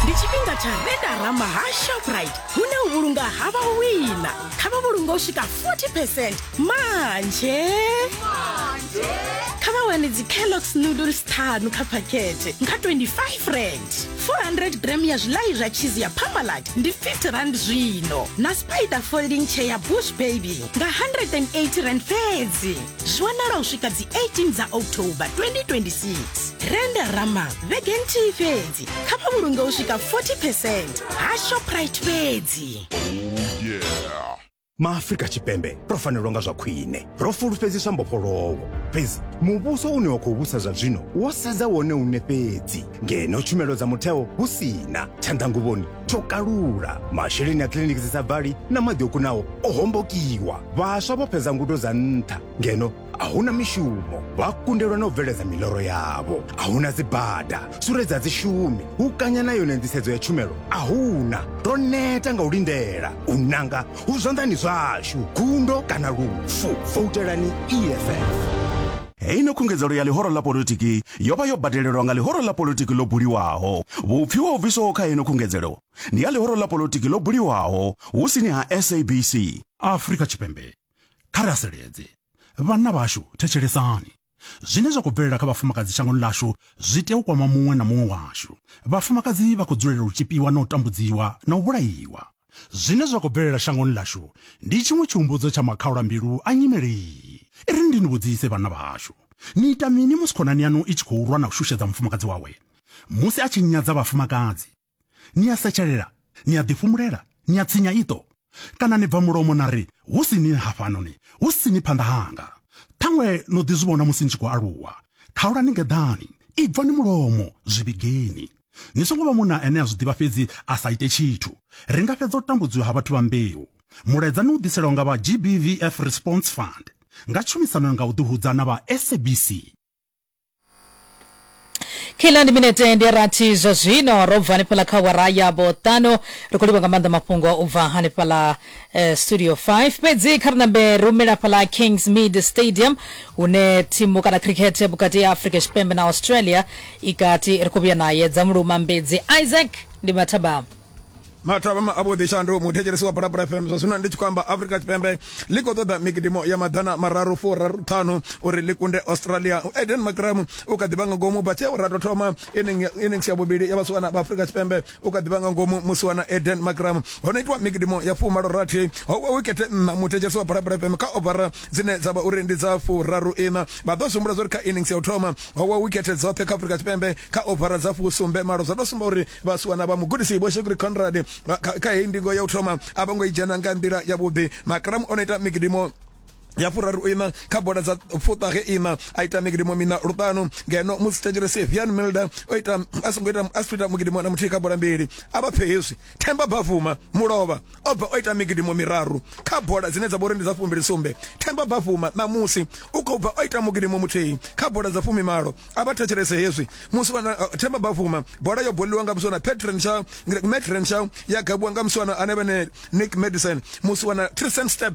ndi tshifhinga tsha redara maha shoprite hune u vhulunga ha vha u wina kha vha vhulunga u swika 40 percent manje kha vha wane dzi kellogs noodles ṱhanu kha phakhethe nga 25 rand 400 gram ya zwilayi zwa cheese ya parmalat ndi 50 rand zwino na spider folding chair ya bush baby nga 180 rand fhedzi zwi wanala u swika dzi 18 dza october 2026 renda rama vhege nthihi fhedzi kha vha vhulunge u swika 40 percent ha shoprite fhedzi maafrika tshipembe ro fanelwa nga zwa khwine ro fulufhedziswa mbofholowo fhedzi muvhuso une wa khou vhusa zwa zwino wo sedza wone une fhedzi ngeno tshumelo dza mutheo hu si na tshanḓanguvhoni tsho kalula masheleni a kiliniki dzi sa bvali na maḓi o kunaho o hombokiwa vhaswa vho fhedza ngudo dza nṱha ngeno a hu na mishumo vha kundelwa na u bveledza miloro yavho a hu na dzibada sure dza dzi shumi hu kanya na yone nḓisedzo ya tshumelo a huna ro neta nga u lindela u nanga hu zwanḓani zwashu gundo kana lufu voutelani eff Heyi no khungedzelo ya ḽihoro ḽa politiki yo vha yo badelelwa nga ḽihoro ḽa politiki ḽo buliwaho. Vhupfiwa ho bviswaho kha heno khungedzelo ndi ha ḽihoro ḽa politiki ḽo buliwaho hu sini ha SABC. Afrika Tshipembe, kha ri haseledze. Vhanna vhashu, thetshelesani. Zwine zwa khou bvelela kha vhafumakadzi shangoni ḽashu zwi tea u kwama muṅwe na muṅwe washu. Vhafumakadzi vha khou dzulela u tzhipiwa na u tambudziwa na u vhulaiwa. Zwine zwa khou bvelela shangoni ḽashu ndi tshiṅwe tshihumbudzo tsha makhaula-mbilu a nyimele iyi. I ri, Ndi ni vhudzise, vhanna vhahashu, ni ita mini musi khonani yaṋu i tshi khou lwa na u shushedza mufumakadzi wawe? Musi a tshi nyadza vhafumakadzi, ni a setshelela, ni a ḓifhumulela, ni a tsinya iṱo, kana ni bva mulomo na ri, Hu si ni hafhanoni, hu si ni phanḓa hanga? Ṱhaṅwe no ḓi zwi vhona musi ni tshi khou aluwa. Khaulani ngeḓani, ibvani mulomo, zwi vhigeni. Ni songo vha munna ane a zwi ḓivha fhedzi a sa ite tshithu. Ri nga fhedza u tambudziwa ha vhathu vha mbeu. Mulaedza ni u ḓiselwa nga vha GBVF Response Fund nga tshumisano nga u ḓihudza na vha SABC. Kila ndi minete ndi rathi zwa zwino ro bva hanefhaḽa kha awara ya vhoṱanu ri khou livha nga maanḓa mafhungo u bva hanefhaḽa Eh, studio 5 fhedzi kha ri nambe ri humela fhaḽa kings mid stadium hune thimu kana cricket vhukati ya afrika tshipembe na australia i kati ri khou vhuya naye dza muluma mbedzi isaac ndi mathabama mathabama avhuḓi shandu muthetshelesi wa phalaphala fm zwa zwino ndi tshi khou amba afrika tshipembe ḽi khou ṱoḓa migidimo ya maḓana mararu furaru ṱhanu uri ḽi kunde australia eden macram u kha ḓivha nga ngomu vha tsheo ra tou thoma innings ya vhuvhili ya vhasiwana vha afrika tshipembe u kha ḓivha nga ngomu musi wana eden makram ho no itiwa migidimo ya fumalo rathi ho wa wikete nna muthetshelesi wa bhalabhala fm kha ovara dzine dza vha uri ndi dza furaru ina vha ḓo sumbula zwauri kha innings ya u thoma ho wa wikete dzoṱhe kha afurika tshipembe kha ovara dza fusumbe malo zwa tou sumba uri vhasiwana vha mugudisi vho shekuri conrad kha heyi ndingo ya u thoma a vho ngo i dzhena nga nḓila yavhuḓi makram o no ita migidimo ya furaru ina kha bola dza fuṱahe ina a ita migidimo mina luṱanu ngeno musi tshenzhelo sevian milda o ita a songo ita a ita mugidimo na muthihi kha bola mbili a vha pfe hezwi themba bafuma mulovha o bva o ita migidimo miraru kha bola dzine dza vha uri ndi dza fumbili sumbe themba bafuma ṋamusi u khou bva o ita mugidimo muthihi kha bola dza fumi malo a vha thetshelese hezwi musi wana uh, themba bafuma bola yo boliwa nga muswana petren shaw metren shaw ya gabuwa nga muswana ane vhane nick medicine musi wana tristan step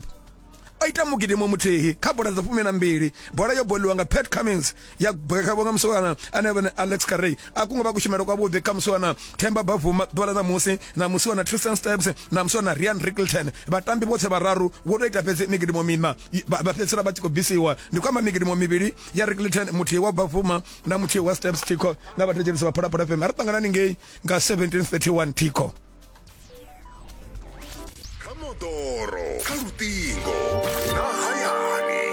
o ita mugidimo muthihi kha bola dza fumi na mbili bola yo boliwa nga pat cummins ya bwekhavho nga musiwana ane vhane alex carey a kunga vha kushumelo kwavhuḓi kha musiwana themba bavuma ḓuvha ḽa ṋamusi na musiwana tristan steps na musiwana rian rickelton vhatambi vhoṱhe vhararu vho tou ita fhedzi migidimo mina vha fhedzisela vha tshi khou bvisiwa ndi khou amba migidimo mivhili ya rickelton muthihi wa bavuma na muthihi wa steps tico na vhathetshelisi vha phalaphala fm a ri ṱanganani ngei nga 1731 tico kha moḓoro kha luṱingo na hayani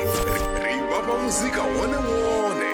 ri vhavha muzika wone wone